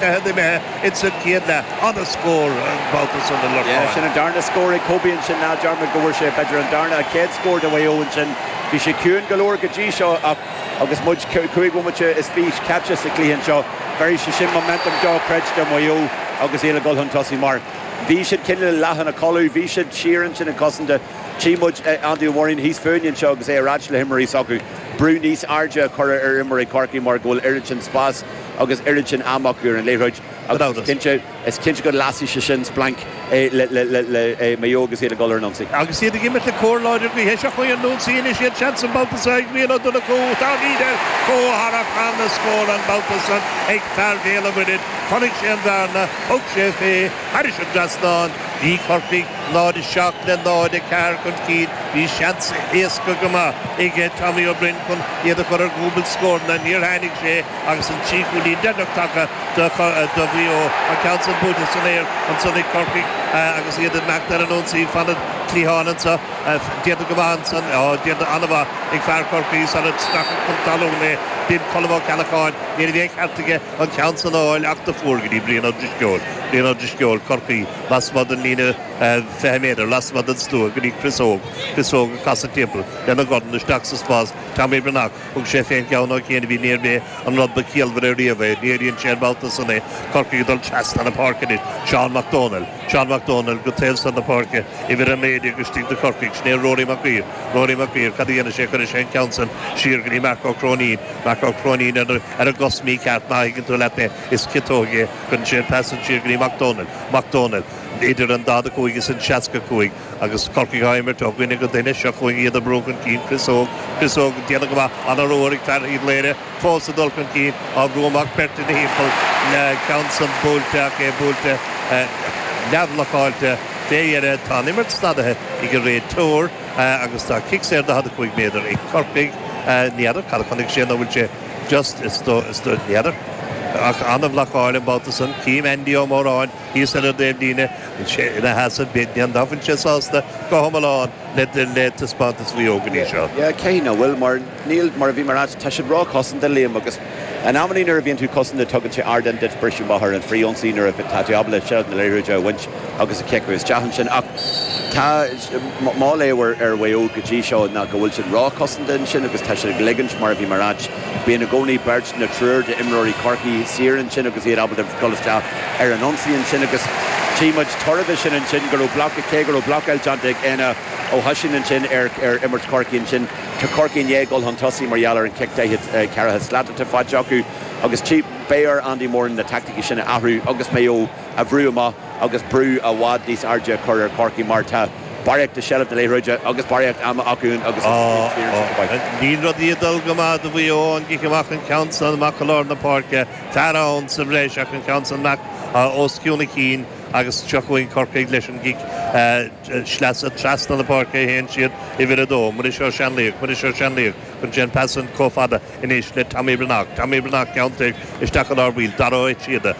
Caithfidh a bheith ins an chéad leath. An-scór an babhta san do Lorcán. Sin an darna scór ag Kobe ansin, ná dearmad go bhfuair sé b'fhéidir an darna, an chéad scór do Mhaigh Eo ansin. Bhí sé ciúin go leor go dtí seo ach agus muid cúig bhomaite is fiche caite sa chluiche anseo, bheirfidh sé sin momentum dochreidte do Mhaigh Eo agus iad ag dul chun tosaigh mar bhí siad cineál leath ina codladh, bhí siad siar ansin ag cosaint. Tchí muid Andy Ó Móráin thíos fúinne anseo agus é ar áit le himreoirí s'acu, brú níos airde a chur ar imreoirí Chorcaí mar go bhfuil oiread sin spáis. Agus oiread sin ama acu ar an liathróid agus is cinnte go lasfaidh sé sin splanc le Maigh Eo agus iad ag dul ar an ionsaí. Agus iad ag imirt le cóir láidir gaoithe seo chugainn ar an ionsaí, anois iad, seans an babhta seo ag Rian Ó Donnchú. Tá Riedel chomh hard céanna scór an babhta seo ag fear Bhéal an Mhuirthead. Chonaic sé an bhearna, thug sé fé, thar an trasnán. Bhí Corcaigh 0:07 le 0:04 chun cinn. Bhí seans éasca go maith ag Tommy Ó Broin chun iad a chur ar dhúbailt scóranna. Níor tháinig sé. Agus an trí chúilín deireanach tagtha do Mhaigh Eo, an ceann sin buaite san aer ansan ag Corcaigh agus iad ag imeacht ar an ionsaí, fan an chliatháin anso, déanta go maith ansan, á, déanta ana-mhaith ag fear Chorcaí sular stracadh é chun talún, b'in Colm Ó Ceallacháin. Ní raibh aon cheart aige an ceann san a fháil ach do fuair go dtí Brian Ó Drisceoil, Brian Ó Drisceoil Chorcaí, lasmuigh den líne fiche méadar, lasmuigh den stua go dtí Chris Óg, Chris Óg ag casadh timpeall lena dhorn isteach sa spás, Tommy Breathnach. Thug sé fén gceann ó chianaibh, níorbh é an rud ba ciallmhaire riamh é. Léiríonn sé an babhta san é, Corcaigh ag dul trasna na páirce anois. Seán Mac Dónaill. Seán Mac Dónaill go taobh san na páirce, uimhir a naoi déag istigh do Chorcaigh. Sin é Rory Mac Uidhir. Rory Mac Uidhir. Cad a dhéanfaidh sé? Cuirfidh sé an ceann san siar go dtí Mark Ó Cróinín. Mark Ó Cróinín ar an gcos mhícheart, má thuigeann tú leat mé, is ciotóg é. Cuireann sé an pas san siar go dtí Mac Dónaill. Mac Dónaill. Idir an daichead a cúig is an seasca cúig. Agus Corcaigh á imirt ó dhuine go duine, seo chugainn iad ag brú chun cinn Chris Óg. Chris Óg ag déanamh go maith an babhta so ag fear Uíbh Laoire, fós ag dul chun cinn, á bhrú amach beirt ina thimpeall, an ceann san buailte ach é buailte neamh-bhlocáilte. Fé dheireadh tá an imirt stopaithe ag an réiteoir agus tá cic saor 45 méadar ag Corcaigh. Ní fheadar cad a chonaic sé nó an bhfuil sé just? Is dóigh, is dóigh, ní fheadar. Ach an-bhlocáil an babhta san. Chím Andy Ó Móráin. Thíos ar an taobh líne, ina sheasamh, ní fhéachann sé sásta go hiomlán le taispeántas Mhaigh Eo go dtí seo. Yeah, cinnte nach bhfuil, mar níl, mar a bhí mé a ráit, tá siad róchosanta, Liam, agus in amannaí nuair a bhíonn tú cosanta tugann sé ardán duit briseadh amach ar an frith-ionsaí nuair a tá jab le seilbh na liathróide a bhaint agus a chiceadh isteach ansin ach tá, mo léamh ar Mhaigh Eo go dtí seo ná go bhfuil siad róchosanta ansin agus tá siad ag ligint, mar a bhí mé a ráit. Bíonn i gcónaí beirt nó triúr d'imreoirí Chorcaí saor ansin agus iad ábalta dul isteach ar an ionsaí ansin agus tchí muid toradh de sin ansin, go raibh bloc, cé go raibh blocáil déanta ag Éanna Ó hOisín ansin ar imirt Chorcaí ansin. Tá Corcaigh i ndiaidh dul chun tosaigh mar gheall ar an chic daichead ceithre slat atá faighte acu agus tchí, beidh ar Andy Moran na taicticí sin a athrú agus Maigh Eo a bhrú amach. agus brú i bhfad níos airde a chur ar Chorcaigh mar tá barraíocht de sheilbh na liathróide agus barraíocht ama acu ann agus níl rudaí ag dul go maith do Mhaigh Eo ón gcic amach, an ceann san amach go lár na páirce, fear ann sa bhreis ach an ceann san amach os cionn a chinn agus seo chugainn Corcaigh leis an gcic sleasa trasna na páirce a théann siad, uimhir a dó, Muiris Ó Seanlaoich, Muiris Ó Seanlaoich, cuireann sé an pas san chomh fada anois le Tommy Breathnach, Tommy Breathnach, ceann toir isteach go lár baill, Dara Ó Síoda.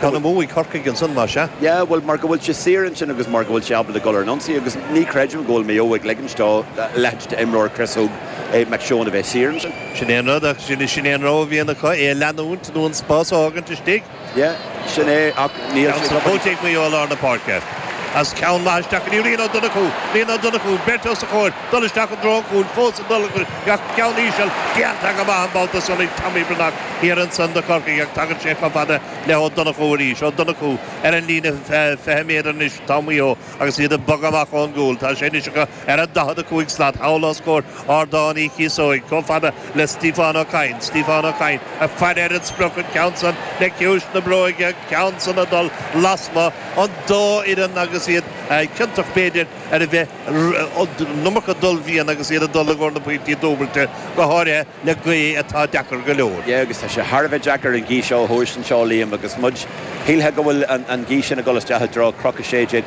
Tá na Muimhnigh, Corcaigh ansan, más ea. Yeah, bhuel, mar go bhfuil sé saor ansin agus mar go bhfuil sé ábalta dul ar an ionsaí agus ní chreidim go bhfuil Maigh Eo ag ligint do leithéid d'imreoir, Chris Óg, eh, Mac Seoin, a bheith saor ansin. Sin é an rud, ach sin é an rogha a bhíonn acu, é a leanúint nó an spás a fhágaint istigh. Yeah, sin é, ach níl siad ag obair. Ceann slóite ag Maigh Eo i lár na páirce. As ceann maith isteach go dtí Rian Ó Donnchú. Rian Ó Donnchú, beirt os a chomhair. dul isteach i dtreo an chúil, fós ag dul ach ceann íseal, déanta go maith an babhta san ag Tommy Breathnach thiar ansan do Chorcaigh ach tagann sé chomh fada le hÓ Donnchú arís, Ó Donnchú ar an líne fiche méadar anois tá Maigh Eo agus iad ag bogadh amach ón gcúl, tá sé anois acu ar an daichead a cúig slat thall os comhair Ardán Uí Chíosóig, chomh fada le Stíofán Ó Cadhain, Stíofán Ó Cadhain ag faire ar an sprioc, an ceann san le ciumhais na bróige, an ceann san ag dul lasmuigh, an dá fhoireann agus iad ciontach b'fhéidir ar a bheith. an iomarca dul bhliain agus iad ag dul i gcomhair na bpointí dúbailte, go háirithe le gaoth atá deacair go leor. Yeah, agus tá sé thar a bheith deacair an gaoth seo a thomhais anseo, Liam, agus muid, shílfeá go bhfuil an gaoth sin ag dul isteach i dtreo Chnoc 16,